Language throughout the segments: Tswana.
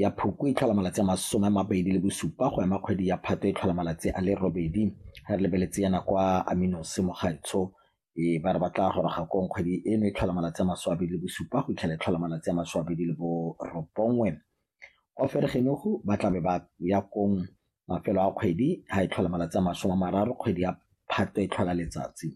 ya Phukwi e tlhola malatsi a masome a mabedi le bosupa go ema kgwedi ya Phatwe e tlhola malatsi a le robedi ga re lebeletse yana kwa Aminose Mogaetsho e ba re ba tla goroga kong kgwedi eno e tlhola malatsi a masome a mabedi le bosupa go itlhela e tlhola malatsi a masome a mabedi le borobongwe kwa Fergenogo ba tlabe ba ya kong mafelo a kgwedi ga e tlhola malatsi a masome a mararo kgwedi ya Phatwe e tlhola letsatsi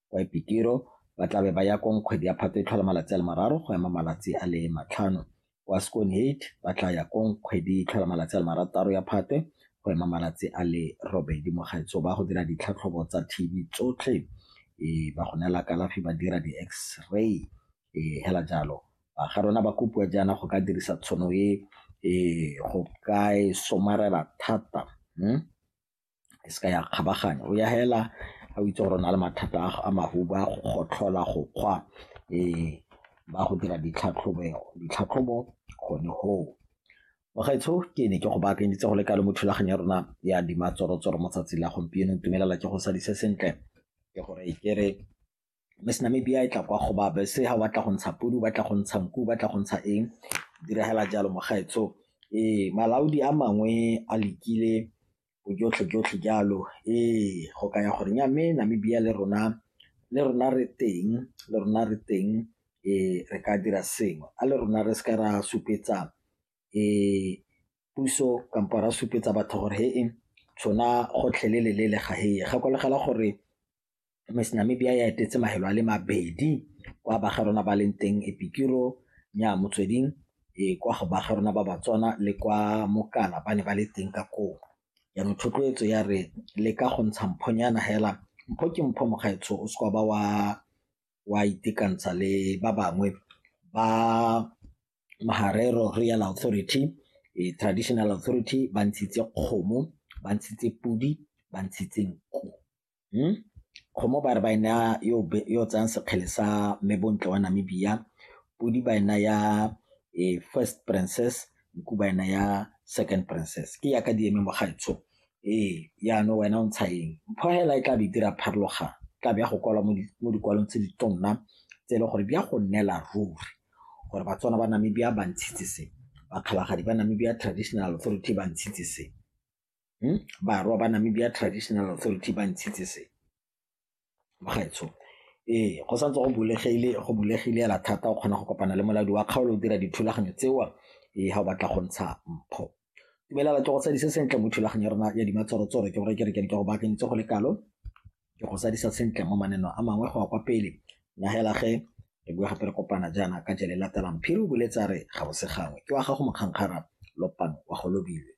Kwa Epitiro, ba tla be ba ya kong kgwedi ya Phatwe e tlhola malatsi a le mararo go ema malatsi a le matlhano. Kwa Skoonheid, ba tla ya kong kgwedi e tlhola malatsi a le marataro ya Phatwe go ema malatsi a le robedi. Mogaetsho ba go dira ditlhatlhobo tsa TB tsotlhe, ba go neela kalafi, ba dira di-X-ray, hela jalo. Ba ga rona ba kopiwa jaana go ka dirisa tshono e go ka e somarela thata. e seka ya kgabaganya o ya fela a o itse gore o na le mathata a mahubu a go gotlhola, go kgwa ba go dira ditlhatlhobo gone goo. Bagaetsho ke ne ke go baakanyeditse go le kalo mo thulaganyo ya rona ya Dima Tsoro Tsoro mo tsatsing la gompieno, ntumelela ke go sadise sentle ke gore ke re Miss Namibia e tla kwa go ba bese ha batla go ntsha podi o batla go ntsha nku o batla go ntsha eng diragala jalo mo gaetso ee malaodi a mangwe a lekile bojotlhe jotlhe jalo ee go kaya gore nya mme Namibia le rona le rona re teng le rona re teng ee re ka dira sengwe a le rona re seka ra supetsa ee puso kampo ra supetsa batho gore he e tshwana gotlhelele le le ga heye gakologela gore Miss Namibia ya etetse mahelo a le mabedi kwa ba ga rona ba leng teng Epikiro nya motsweding e kwa go ba ga rona ba Batswana le kwa Mokana ba ne ba le teng ka koo jaanong thotloetso ya re le ka go ntsha mphonyana hela mpho ke mpho mokgaetsho o seka ba wa wa itekantsha le ba bangwe ba Maharero Royal Authority e Traditional Authority ba ntshitse kgomo ba ntshitse podi ba ntshitse nku. Hmm? Kgomo ba re ba e naya yo o tsayang sekgele sa Mme Bontle wa Namibia, Podi ba e naya eh, first princess, Nku ba e naya second princess. Ke yaka di eme mo gaetsho. Ee, yaanong wena o ntsha eng? Mpho hela e tla be e dira pharologano, e tla be ya go kwalwa mo di- mo dikwalong tse di tonna tse e leng gore di ya go nnela ruri gore Batswana ba Namibia ba ntshitse se, Bakgalagadi ba Namibia Traditional Authority ba ntshitse se. Umm barwa ba Namibia Traditional Authority ba ntshitse se bagaetsho. Ee, go santse go bulegile go bulegile hela thata o kgona go kopana le molaodi wa kgaolo o dira dithulaganyo tseo ee ga o batla go ntsha mpho. Dumelela ke go tsadise sentle mo thulaganyo ya rona ya dimatsorotsoro ke gore ke re ke go baakanyitse go le kalo ke go sadisa sentle mo maneno a mangwe go ya kwa pele na hela ge re bua gape re kopana jaana ka jele latelang phiri o boletse a re ga o se gangwe ke wa gago mokgankgara lopang wa go lobilwe